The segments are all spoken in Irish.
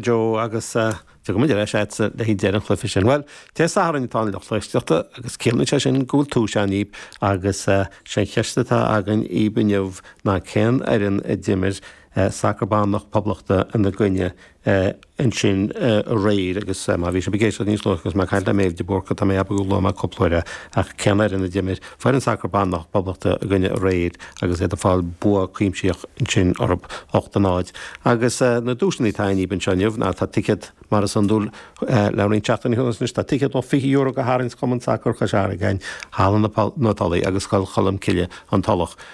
Joe, Agus gabhfaidh muid ar ais le haghaidh deireadh an chluife sin. Bhuel, Dé Sathairn atá ann, a lucht éisteachta agus ciallaíonn sé sin go bhfuil duais ann dhíb, agus sé an cheist atá againn dhíb inniu ná cén fhoireann a d'imir sacar ban na Poblachta ina gcoinne ansin aréir agus má bhí sib ag éisteacht níos luath agus mé ag caint le Méabh de Búrca tá mé ag ceapadh gur luaigh mé cúpla uair é ach cén fhoireann a d'imir Foireann sacair ban na Poblachta ina gcoinne aréir agus iad ag fáil bua cuimsitheach ansin orthu, 8 a 0. Agus na duaiseanna atá againn dhíb anseo inniu ná, tá ticéad, mar is iondúil le roinnt seachtainí anuas anois, tá ticéad luach €20 do tharraingt Chumann Sacair Chois Fharraige, Halla na Tulaí agus Scoil Cholm Cille, An Tulach.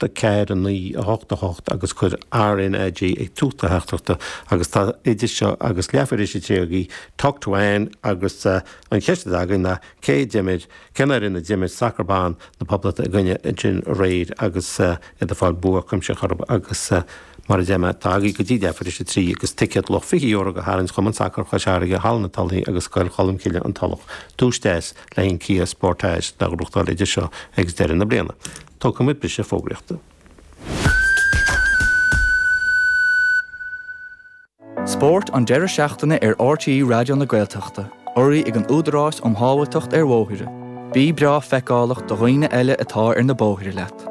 D4 in 1988 agus cuir RnaG ag tús do theachtaireachta agus tá idir seo agus leathuair tar éis a trí agaibh a theacht chugainn agus an cheist atá againn ná, cé a d'imir, cén fhoireann a d'imir sacar ban na Poblachta ina gcoinne ansin aréir agus iad ag fáil bua cuimsitheach orthu agus mar a deir mé, tá agaibh go dtí leathuair tar éis a trí agus ticéad luach €20 do tharraingt Chumann Sacair Chois Fharraige, Halla na Tulaí agus Scoil Cholmcille, An Tulach, duais deas. tá an Kia Sportage le gnóthachtáil idir seo agus deireadh na bliana. Tógfaidh muid briseadh fógraíochta. Spórt an deireadh seachtaine ar RTÉ Raidió na Gaeltachta, urraithe ag an Údarás um Shábháilteacht ar Bhóithre. Bí breá feiceálach do dhaoine eile atá ar na bóithre leat.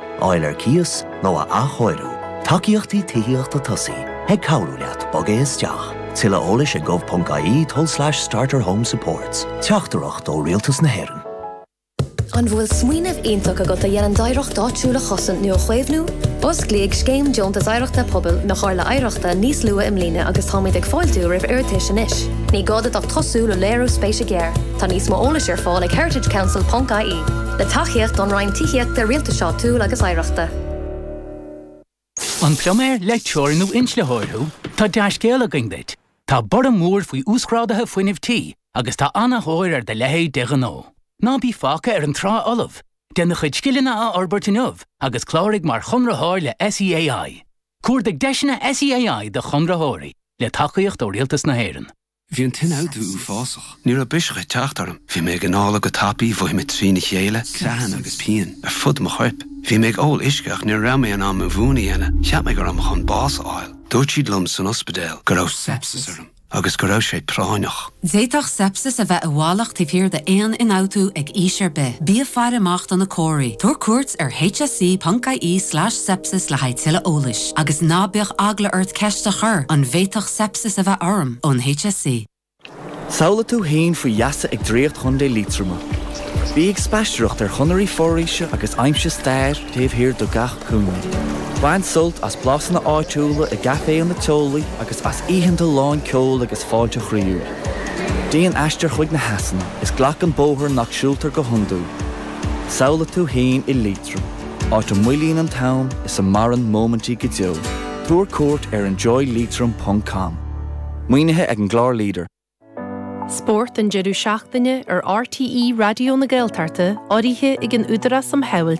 fháil ar cíos nó a athchóiriú. Tacaíochtaí Tithíochta Tosaigh ag cabhrú leat bogadh isteach. Tuilleadh eolais ag gov.ie tulslais starterhomesupports. Teachtaireacht ó Rialtas na hÉireann. An bhfuil smaoineamh iontach agat a dhéanann d'oidhreacht áitiúil a chosaint nó a chaomhnú? Osclaíodh Scéim Deontas Oidhreachta Pobail na Comhairle Oidhreachta níos luaithe i mbliana agus táimid ag fáiltiú roimh iarratais anois. Ní gá duit ach tosú le léiriú spéise gearr. Tá níos mó eolais ar fáil ag heritagecouncil ponc ie, le tacaíocht ón Roinn Tithíochta, Rialtais Áitiúil agus Oidhreachta. An pluiméir, leictreoir nó inslitheoir thú? Tá dea-scéal againn duit! Tá borradh mór faoi uasghráduithe fuinnimh tí agus tá ana-thóir ar do leithéid de ghnó. Ná bí fágtha ar an trá fholamh! Déan do chuid scileanna a fhorbairt inniu agus cláraigh mar chonraitheoir le SEAI. Cuardaigh deiseanna SEAI do chonraitheoirí, le tacaíocht ó Rialtas na hÉireann. Bhí an t-ionfhabhtú uafásach. Ní raibh biseach ag teacht orm. Bhí mé ag análú go tapaidh, mhothaigh mé trína chéile, creathanna agus pian ar fud mo choirp. Bhí mé ag ól uisce ach ní raibh mé in ann mo mhún a dhéanamh. Cheap mé go raibh mé chun bás a fháil. Dúirt siad liom san ospidéal go raibh sepsis orm agus go raibh sé práinneach. D'fhéadfadh sepsis a bheith i bhfalach taobh thiar d'aon ionfhabhtú ag aois ar bith. Bí ag faire amach do na comharthaí. Tabhair cuairt ar hse.ie slash sepsis le haghaidh tuilleadh eolais. Agus ná bíodh eagla ort ceist a chur, an bhféadfadh sepsis a bheith ionat? a bheith orm ón HSC. Samhlaigh tú fhéin faoi gheasa ag Draíocht Chontae Liatroma. Bí ag spaistearacht ar chonairí foraoise agus aimsigh stair taobh thiar de gach cúinne. Bain sult as blasanna áitiúla i gcaiféanna teolaí agus as oícheanta lán ceoil agus fáilte chroíúil. Déan aistear chuig na heasanna is glac an bóthar nach siúltar go hiondúil. Samhlaigh tú fhéin i Liatroim. áit a mhoillíonn an t-am is a maireann móimintí go deo. Tabhair cuairt ar enjoyleitrim ponc com. Maoinithe ag an gclár leader. Spórt an deireadh seachtaine ar RTÉ Raidió na Gaeltachta urraithe ag an Údarás um Shábháilteacht